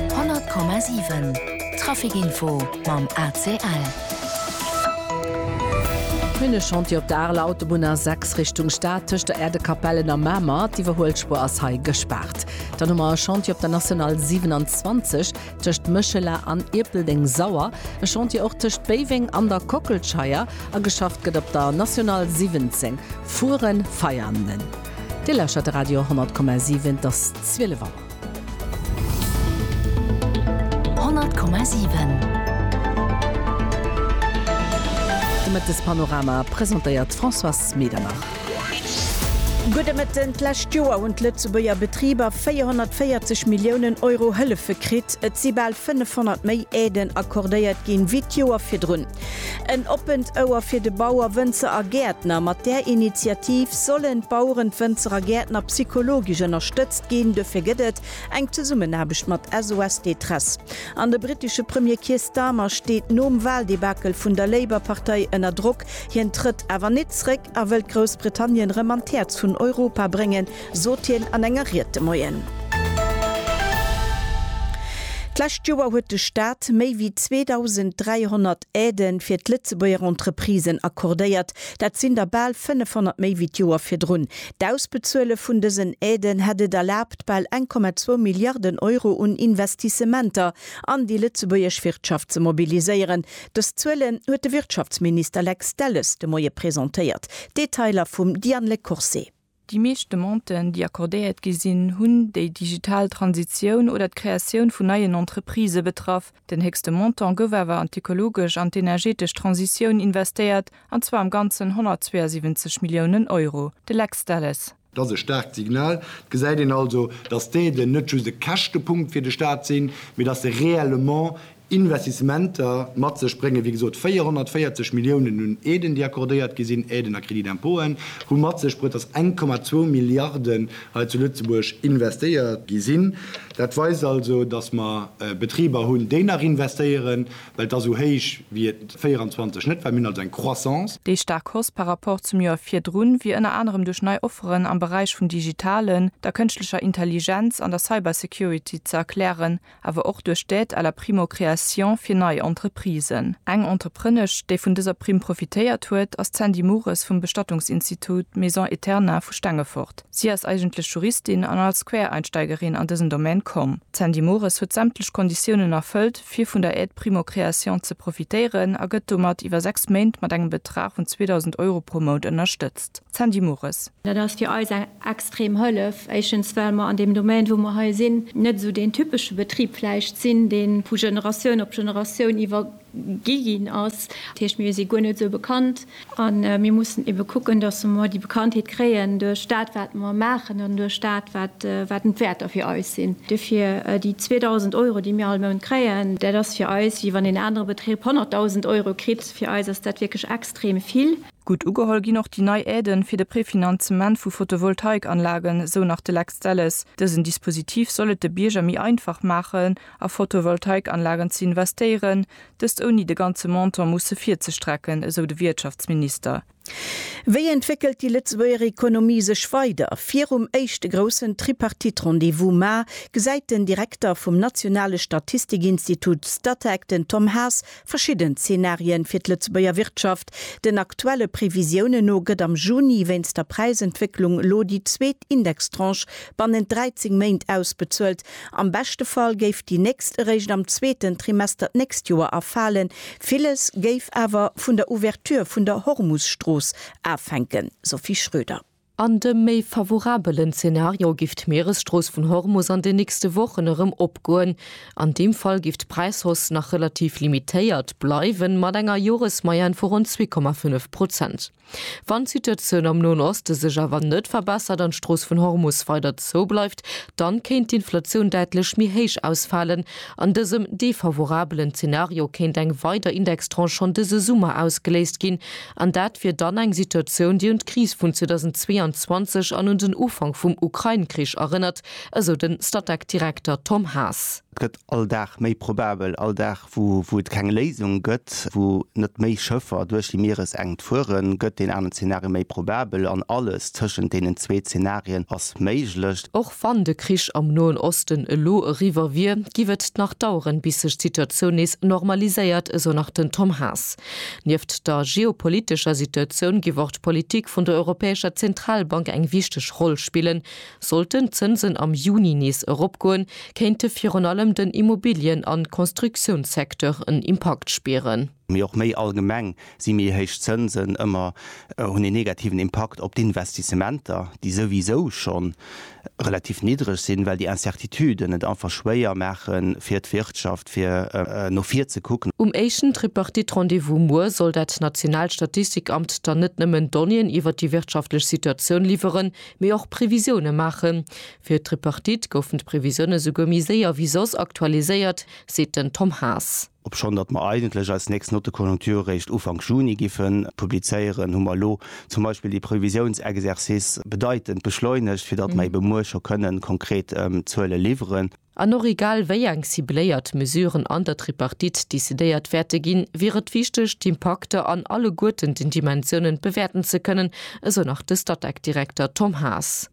100,7 Trafic Info mam ACL. Minne Chantier op der Areler Autobunn A6 Richtung Stad tëscht der Äerdekapellen a Mamer. D'Iwwerhuelspuer ass hei gespaart. Dann hu mer e Chantier op der National 27 tëscht Méchela an Ierpeldeng Sauer. E Chantier och tëscht Béiweng an der Kockelscheier. A geschafft gëtt op der National 17 Furen-Veianen. Dir lauschtert de Radio 10,7. Et ass 12 Auer. 10,7 De Mëttespanorama presentéiert d'Françoise Medernach. Gudde Mëtten, D'lescht Joer hunn d'Lëtzebuerger Betriber 440 Milliounen Euro Hëllefe kritt. Et si bal 500 méi Aiden accordéiert ginn, wéi d'Joer virdrun. En oppent Ouer fir de Bauer, Wënzer a Gäertner, Mat där Initiativ sollen d'Baueren, d'Wënzer a Gäertner psychologesch ënnerstëtzt ginn. Duerfir gëtt et eng Zesummenaarbecht mat SOS Détresse. An de brittesche Premier Keir Starmer steet nom Waldebakel vun der Labour-Partei ënner Drock. Hien trëtt awer net zréck. a wëllt Groussbritannien rëm an d'Häerz vun Europa bréngen, sot hien an enger Ried de Moien. D'lescht Joer huet de Staat méi wéi 2.300 Aide fir d'Lëtzebuerger Entreprisen accordéiert. Dat sinn der bal 500 méi wéi d'Joer virdrun. D'Ausbezuele vun dësen Aiden hätt et erlaabt, bal 1,2 Milliarden Euro un Investissementer an déi lëtzebuergesch Wirtschaft ze mobiliséieren, Dës Zuelen huet de Wirtschaftsminister Lex Delles de Moie presentéiert. Detailer vum Diane Lecourcé. Déi meescht Demanden, déi accordéiert gi sinn, hunn déi digital Transitioun oder d'Kreatioun vun neien Entreprisë betraff. Den héchste Montant gouf awer an d'ökologesch an d'energetesch Transitioun investéiert, an zwar am Ganzen 172 Milliounen Euro. De Lex Delles. Dat ass e staarkt Signal. Et gesäit een also, datt d'Aiden net just e Käschtepunkt fir de Staat sinn, mee datt se réellement Investissementer mat sech bréngen. Wéi gesot, 440 Milliounen un Aiden, déi accordéiert gi sinn, Aiden a Crédits d'impôten, hu mat sech bruet, datt 1,2 Milliarden hei zu Lëtzebuerg investéiert gi sinn. Dat weist also, datt mer Betriber hunn, déi nach investéieren, Well et ass esou héich wéi et 24 net war. Mir hunn also eng Croissance. Déi staark Hausse par rapport zum Joer virdrun wier ënner anerem duerch nei Offeren am Beräich vum Digitalen, der kënschtlecher Intelligenz an der Cybersecurity ze erklären, awer och duerch d'Aide à la primo-création fir nei Entreprisen. Eng Entreprenesch, déi vun dëser Primm profitéiert huet, ass d'Sandy Mures vum Bestattungsinstitut Maison Eterna vu Stengefort. Si ass eigentlech Juristin an als Quereinsteigerin an dësen Domän komm. D'Sandy Mures huet sämtlech Konditiounen erfëllt, fir vun der Aide primo-création ze profitéieren a gëtt domat iwwer sechs Méint mat engem Betrag vun 2.000 Euro pro Mount ënnerstëtzt. D'Sandy Mures. Dat ass fir eis eng extrem Hëllef. Éischtens, well mer an deem Domaine, wou mer hei sinn, net esou deen typesche Betrib vläicht sinn, dee vu Generatioun op Generatioun iwwergi ginn ass. Dat heescht, mir si guer net esou bekannt. A mir mussen ebe kucken, dass mer déi Bekanntheet kréien duerch dat, wat mer maachen an duerch dat, wat den d'Wäerter fir eis sinn. Dofir, déi 2.000 Euro, déi mir all Mount kréien, dat ass fir eis, wéi wann een anere Betrib 100.000 Euro kritt. Fir eis ass dat wierklech extrem vill. Gutt ugeholl ginn och déi nei Aiden fir de Prefinanzement vu Photovoltaikanlagen, esou nach de Lex Delles. Dësen Dispositif soll et de Bierger méi einfach maachen, a Photovoltaikanlagen ze investéieren, Dëst ouni de ganze Montant musse virzestrecken, esou de Wiertschaftsminister. Wéi entwéckelt déi Lëtzebuerger Ekonomie sech weider? Virum éischte groussen Tripartite-Rendez-vous Mar gesäit den Direkter vum nationale Statistikinstitut Statec, den Tom Haas, verschidden Zenarien fir d'Lëtzebuerger Wirtschaft. Den aktuelle Previsiounen no gëtt am Juni wéinst der Präisentwécklung elo déi zweet Indextranche bannent 13 Méint ausbezuelt. Am beschte Fall géif déi nächst eréischt am zweeten Trimester d'nächst Joer erfalen. Villes géif awer vun der Ouverture vun der Hormusstrooss afänken, Sophie Schröder. An dem méi favorabelen Zenario giff d'Mieresstrooss vun Hormus an den nächste Wochen erëm opgoen. An deem Fall giff d'Präishausse nach relativ limitéiert bleiwen, mat enger Joresmoyenne vu ronn zwee Komma fënnef Prozent. Wann d'Situatioun am Noen Oste sech awer net verbessert an d'Strooss vun Hormus weider zou bleift, dann kéint d'Inflatioun däitlech méi héich ausfalen. An dësem defavorabelen Zenario kéint eng weider Indextranche schonn dëse Summer ausgeléist ginn. An dat wier dann eng Situatioun, déi un d'Kris vun 2022 an un den Ufank vum Ukrain-Krich erënnert, esou den Statec-Direkter Tom Haas. Et gëtt all Dag méi probabel, all Dag wou et keng Léisung gëtt, wou net méi Schëffer duerch déi Mieresenkt fueren, gëtt deen aneren Zeenario méi probabel, an alles tëschent deenen zwee Zeenarien ass méiglech. Och wann de Krich am Noen Osten elo eriwwer wier, giff et nach daueren, bis sech d'Situatioun nees normaliséiert, esou nach den Tom Haas. Nieft der geopolitescher Situatioun giff och d'Politik vun der Europäescher Zentralbank eng wichteg Roll spillen, Sollten d'Zënsen am Juni nees eropgoen, kéinte virun allem den Immobilien an Konstruktiounssecteur en Impakt spieren. Mee och méi allgemeng si méi héich Zënsen ëmmer hunn een negativen Impakt op d'Investissementer, déi souwisou schonn relativ niddreg sinn, well déi Incertituden et einfach schwéier maache fir d'Wirtschaft fir no vir ze kucken. Um éischten Tripartite-Rendez-vous muer soll dat nationaalt Statistikamt dann net nëmmen Donnéeën iwwer déi wirtschaftlech Situatioun liwweren, mee och Previsioune maachen. Fir d'Tripartite goufen d'Previsioune souguer méi séier wéi soss aktualiséiert, seet den Tom Haas. Obschonn datt mer eigentlech eis nächst Note conjoncture réischt Ufank Juni giffe publizéieren, hu mer elo zum Beispill dee Previsiounsexercice bedeitend beschleunegt, fir datt mer ebe muer scho kënnen konkret Zuele liwweren. An och egal wéi eng cibléiert Mesuren an der Tripartite decidéiert wäerte ginn, wier et wichteg, d'Impakter an alleguerten den Dimensiounen bewäerten ze kënnen, esou nach de Statec-Direkter Tom Haas.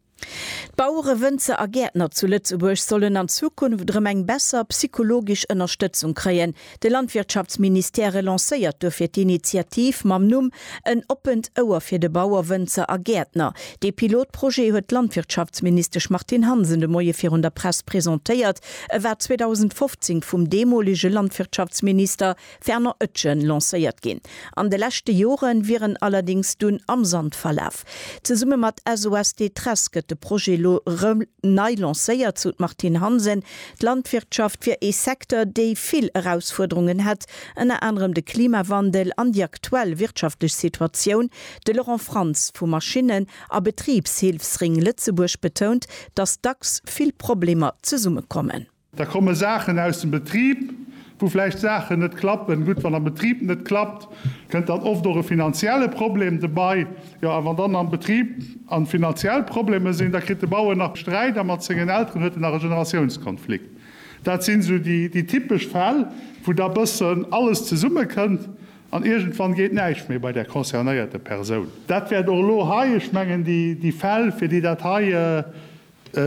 D'Bauere, Wënzer a Gäertner zu Lëtzebuerg sollen an Zukunft erëm eng besser psychologesch Ënnerstëtzung kréien. De Landwirtschaftsministère relancéiert duerfir d'Initiativ mam Numm En oppent Ouer fir de Bauer, Wënzer a Gäertner. Dee Pilotprojet huet d'Landwirtschaftsministesch Martine Hansen de Moie virun der Press presentéiert. E war 2015 vum deemolege Landwirtschaftsminister Fernand Oetjen lancéiert ginn. An de leschte Jore wier en allerdéngs dunn am Sand verlaf. Zesumme mat SOS Détresse gëtt de Projet elo rëm nei lancéiert, sou d'Martine Hansen. D'Landwirtschaft wier ee Secteur, dee vill Erausfuerderungen hätt, ënner anerem de Klimawandel an déi aktuell wirtschaftlech Situatioun. De Laurent Franz vu Maschinnen a Betribshilfsring Lëtzebuerg betount, datt dacks vill Problemer zesummekommen. Da komme Saachen aus dem Betrib, wou vläicht Saachen net klappen. Gutt, wann am Betrib net klappt, kënnt dann oft och e finanzielle Problem dobei. Jo, a wann dann am Betrib an finanziell Probleme sinn, da kritt de Bauer nach Sträit a mat sengen Elteren huet en nach e Generatiounskonflikt. Dat sinn esou déi typesch Fäll, wou da bëssen alles zesummekënnt an iergendwann geet näischt méi bei der concernéierte Persoun. Dat wäert och elo hei, ech mengen déi Fäll, fir déi dat hei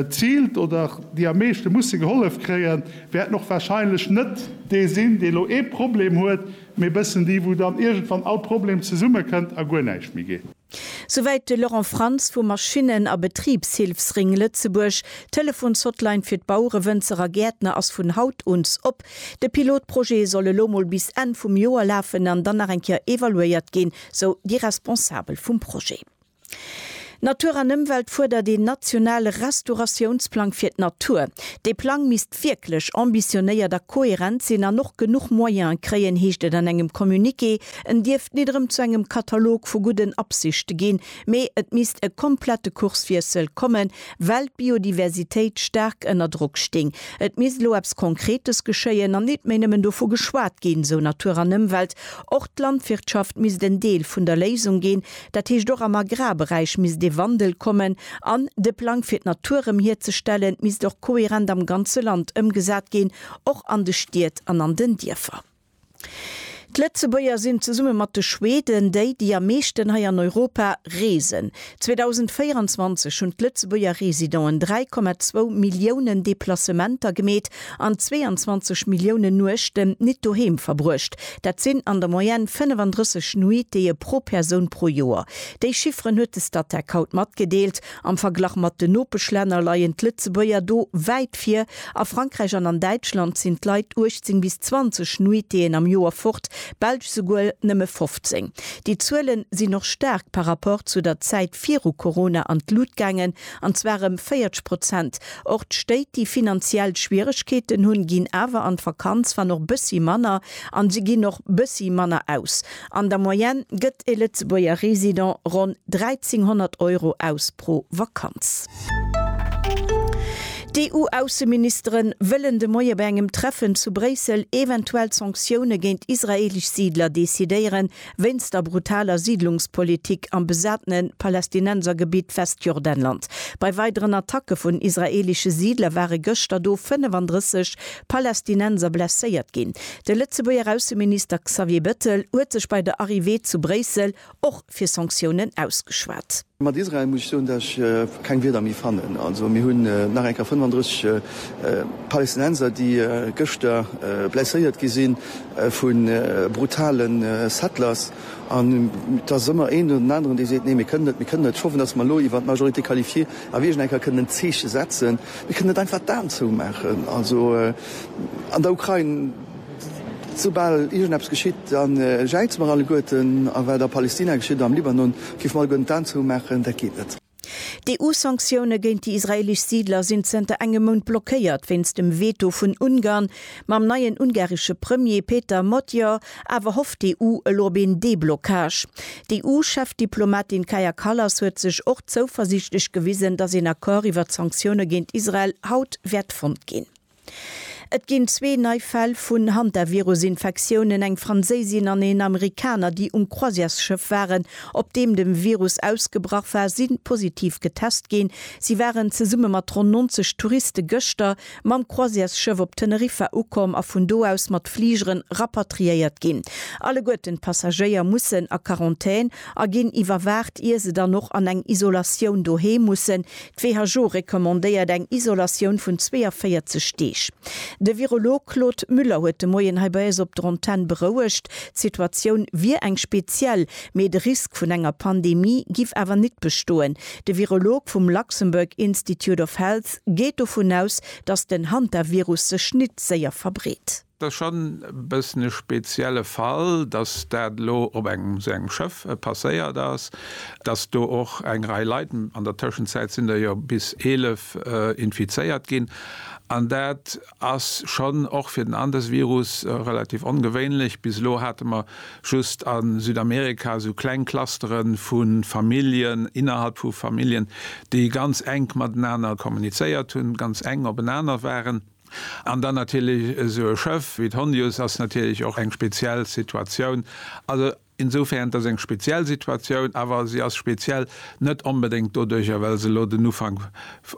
Ziilt oder déi am meeschte musse gehollef kréien, wäerten och wahrscheinlech net dee sinn, dee lo ee Problem huet, mee bëssen déi, wou dann iergendwann all Problem zesummekënnt a guer näischt méi geet. Souwäit de Laurent Franz vum Maschinnen a Betribshilfsring Lëtzebuerg. D'Telefonshotline fir d'Bauere, Wënzer a Gäertner ass vun haut uns op. De Pilotprojet soll elo mol bis Enn vum Joer lafen an dann nach eng Kéier evaluéiert ginn, sou déi Responsabel vum Projet. Natur an Ëmwelt fuerdert een nationale Restauratiounsplang fir d'Natur. Dee Plang misst wierklech ambitionéiert a kohärent sinn an och genuch Moyene kréien, heescht et an engem Communiqué. En dierft nit erëm zu engem Katalog vu gudden Absichte ginn, mee et misst e komplette Kurswiessel kommen, well d'Biodiversitéit staark ënner Drock sting. Et misst elo eppes Konkretes geschéien an nit méi nëmmen dovu geschwat ginn, sou Natur an Ëmwelt. Och d'Landwirtschaft misst en Deel vun der Léisung ginn. Dat heescht och am Agrarberäich misst ee Wandel kommen an de Plang fir d'Natur erëm hierzestellen misst och kohärent am ganze Land ëmgesat ginn, och an de Stied an an den Dierfer. D'Lëtzebuerger sinn zesumme mat de Schweden déi, déi am meeschten hei an Europa reesen. 2024 hunn d'Lëtzebuerger Residenten 3,2 Milliounen Deplacementer gemeet an 22 Milliounen Nuechten nit doheem verbruecht. Dat sinn an der Moyenne 35 Nuitéë pro Persoun pro Joer. Déi Chifferen huet de Statec haut matgedeelt. Am Verglach mat den Nopeschlänner leien d'Lëtzebuerger do wäit vir. A Frankräich an an Däitschland sinn d'Leit 18 bis 20 Nuitéën am Joer fort, Belsch souguer nëmme 15. Déi Zuele sinn och staark par Rapport zu der Zäit viru Corona an d'Lut gaangen. an zwar ëm 40 Prozent. Och d'Stéit, déi finanziell Schwieregkeeten hunn, ginn awer an d'Vakanz, wann och bëssi manner, an se ginn och bëssi manner aus. An der Moyenne gëtt e Lëtzebuerger Resident ronn 1.300 Euro aus pro Vakanz. D'EU-Ausseministere wëllen de Moie bei engem Treffen zu Bréissel eventuell Sanktioune géint israeelesch Siidler decidéieren, wéinst der brutaler Siidlungspolitik am besatene Palästinensergebitt Westjordanland. Bei weideren Attacke vun israeelesche Siidler ware gëschter do 35 Palästinenser blesséiert ginn. De Lëtzebuerger Ausseminister Xavier Bettel huet sech bei der Arrivée zu Bréissel och fir Sanktiounen ausgeschwat. Mat Israel muss ech soen, datt ech keng Wierder méi fannen. Also mir hunn nach eng Kéier 35 Palästinenser, déi gëschter blesséiert gi si vu brutale Settlers. An et ass ëmmer een oder den aneren, dee seet, nee mir kënnen net, mir kënnen net. Ech hoffen, datt mer elo iwwer d'Majorité qualifiée a wierklech nach eng Kéier kënnen en Zeeche setzen. Mir kënnen net einfach d'Aen zoumaachen an der Ukrain. Soubal iergendeppes geschitt, da jäize mer alleguerten. A wat a Palestina geschitt oder am Libanon, géife mer alleguerten d'Aen zoumaachen. Dat geet net. D'EU-Sanktioune géint déi israeelesch Siidler sinn zënter engem Mount blockéiert wéinst dem Veto vun Ungarn. Mam neien ungaresche Premier Péter Magyar awer hofft d'EU elo op een Deblockage. D'EU-Chefdiplomatin Kaja Kallas huet sech och zouversiichtlech gewisen, datt een Accord iwwer d'Sanktioune géint Israel haut wäert fonnt ginn. Et ginn zwee nei Fäll vun Hantavirus-Infektiounen, eng Franséisin an een Amerikaner, déi um Croisièresschëff waren, op deem de Virus ausgebrach war, si positiv getest ginn. Si waren zesumme mat ronn 90 Touriste gëschter mam Croisièresschëff op Teneriffa ukomm a vun do aus mat Fligeren rapatriéiert ginn. Alleguerten d'Passagéier mussen a Quarantän a ginn iwwerwaacht, ier se dann och an eng Isolatioun doheem mussen, D'WHO recommandéiert eng Isolatioun vun 42 Deeg. De Virolog Claude Muller huet de Moien hei bei eis op der Antenn berouegt, d'Situatioun wier eng speziell, mee de Risk vun enger Pandemie giff awer nit bestoen. De Virolog vum Luxembourg Institute of Health geet dovun aus, datt den Hantavirus sech nit séier verbreet. Et ass schonn e bëssen e spezielle Fall, dass dat elo op engem esou engem Schëff passéiert ass, dass do och eng Rei Leit, an der Tëschenzäit sinn der jo bis 11 infizéiert ginn, an dat ass schonn och fir den Andesvirus relativ ongewéinlech. Bis elo hate mer just a Südamerika esou kleng Clustere vu Familljen, innerhalb vu Familljen, déi ganz enk matenaner kommunizéiert hunn, ganz enk openaner waren. An dann natierlech esou e Schëff wéi d'Hondius ass natierlech och eng speziell Situatioun. Also insofern, et ass eng speziell Situatioun, awer se ass speziell net onbedéngt doduerjer, well se elo den Ufank,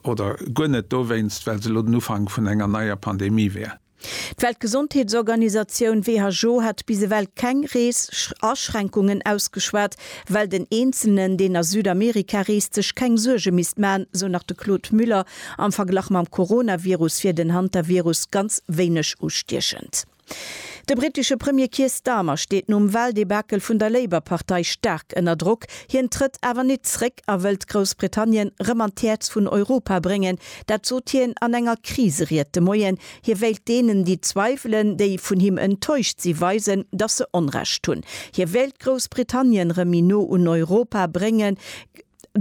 oder guer net dowéinst, well se elo den Ufank vun enger neier Pandemie wär. D'Weltgesondheetsorganisatioun, who, hat bis ewell keng Rees-Aschränkungen ausgeschwat, well den Eenzelen, deen a Südamerika reest, sech keng Suerge misst maachen, esou nach de Claude Müller, Am Verglach mam Coronavirus wier den Hantavirus ganz wéineg ustiechend. De brittesche Premier Keir Starmer steet nom Waldebakel vun der Labour-Partei staark ënner Drock. Hien trëtt awer nit zréck a wëllt Groussbritannien rëm an d'Häerz vun Europa bréngen. Dat sot hien an enger Kriseried de Moien. Hie wéilt deenen, déi zweiwelen, déi vun him enttäuscht si, weisen, datt se Onrecht hunn. Hie wéilt Groussbritannien rëm méi no un Europa bréngen.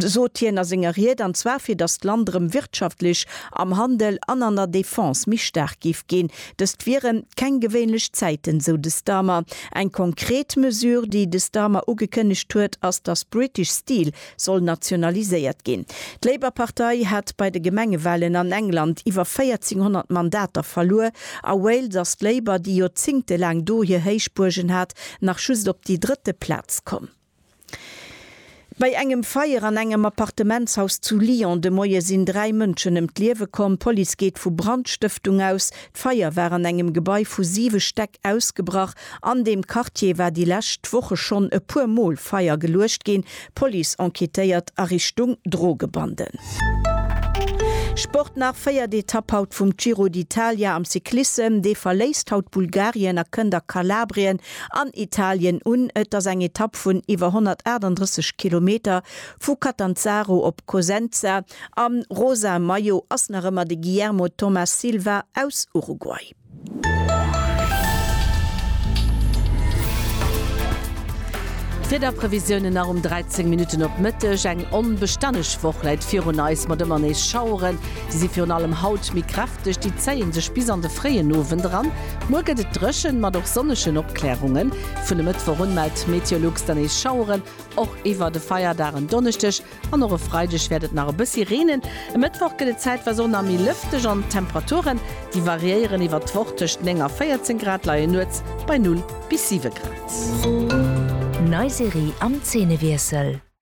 sot hien a senger Ried, an zwar fir datt d'Land erëm wirtschaftlech, am Handel an an der Defense méi staark géif ginn. Dëst wieren keng gewéinlech Zäiten, esou de Starmer. Eng konkret Mesure, déi de Starmer ugekënnegt huet, ass, datt British Steel soll nationaliséiert ginn. D'Labour-Partei hat bei de Gemengewalen an England iwwer 1400 Mandater verluer. A Wales ass d'Labour, déi joerzéngtelaang do hir Héichbuergen hat, nach just op déi drëtte Plaz komm. Bei engem Feier an engem Appartementshaus zu Lyon de Moie sinn dräi Mënschen ëm d'Liewe komm. D'Police geet vu Brandstëftung aus. D'Feier war an engem Gebai vu siwe Stäck ausgebrach. An deem Quartier war déi lescht Woche schonn e puer Mol Feier geluecht ginn. D'Police enquêtéiert a Richtung Drogebanden. Sport nach, Véiert Etapp haut vum Giro d'Italia am Cyclissem. Dee verléisst haut Bulgarien a kënnt a Kalabrien. An Italien un. Et ass eng Etapp vun iwwer 138 Kilometer, vu Catanzaro op Cosenza. Am rosa Maillot ass nach ëmmer de Guillermo Thomas Silva aus Uruguay. Wiederprevisiounen nach um 13 Minutten op Mëtteg, Eng onbestänneg Woch läit virun eis mat ëmmer nees Schaueren. Si si virun allem haut méi kräfteg. Duerch déi zéie sech bis an de fréien Owend eran. Muer gëtt et dréchen, mat och sonnegen Opklärungen. Vun e Mëttwoch un mellt Meteolux dann nees Schaueren, och iwwer de Feierdag. En Donneschdeg an och e Freideg wäert et nach e bëssi reenen. E Mëttwoch gëtt et zäitweis och nach méi lëfteg an d'Temperaturen, déi variéieren iwwer d'Woch. Tëscht 9 a 14 Grad leien nuets bei 0 bis 7 Grad. Nei Serie am Zeenewiessel.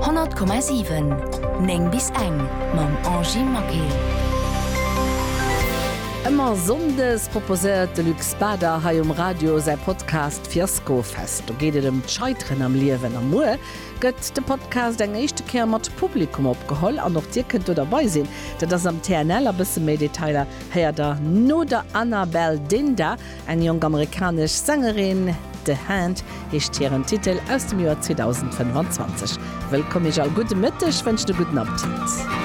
100,7 9 bis eng mam Angie Maquet. Ëmmer Sonndes proposéiert de Luc Spader hei um Radio säi Podcast Fiaskofest. Do geet et ëm d'Scheiteren am Liewen. A muer gëtt de Podcast eng éischte Kéier mat Publikum opgeholl an och dir kënnt do derbei sinn. Dat ass am TNL a bësse méi Detailer héiert der no der Anabelle Dinda. Eng jonk amerikanesch Sängerin, The Hand heescht hiren Titel aus dem Joer 2025. Wëllkomm Iech all, gudde Mëtteg, wënscht e gudden Appetit.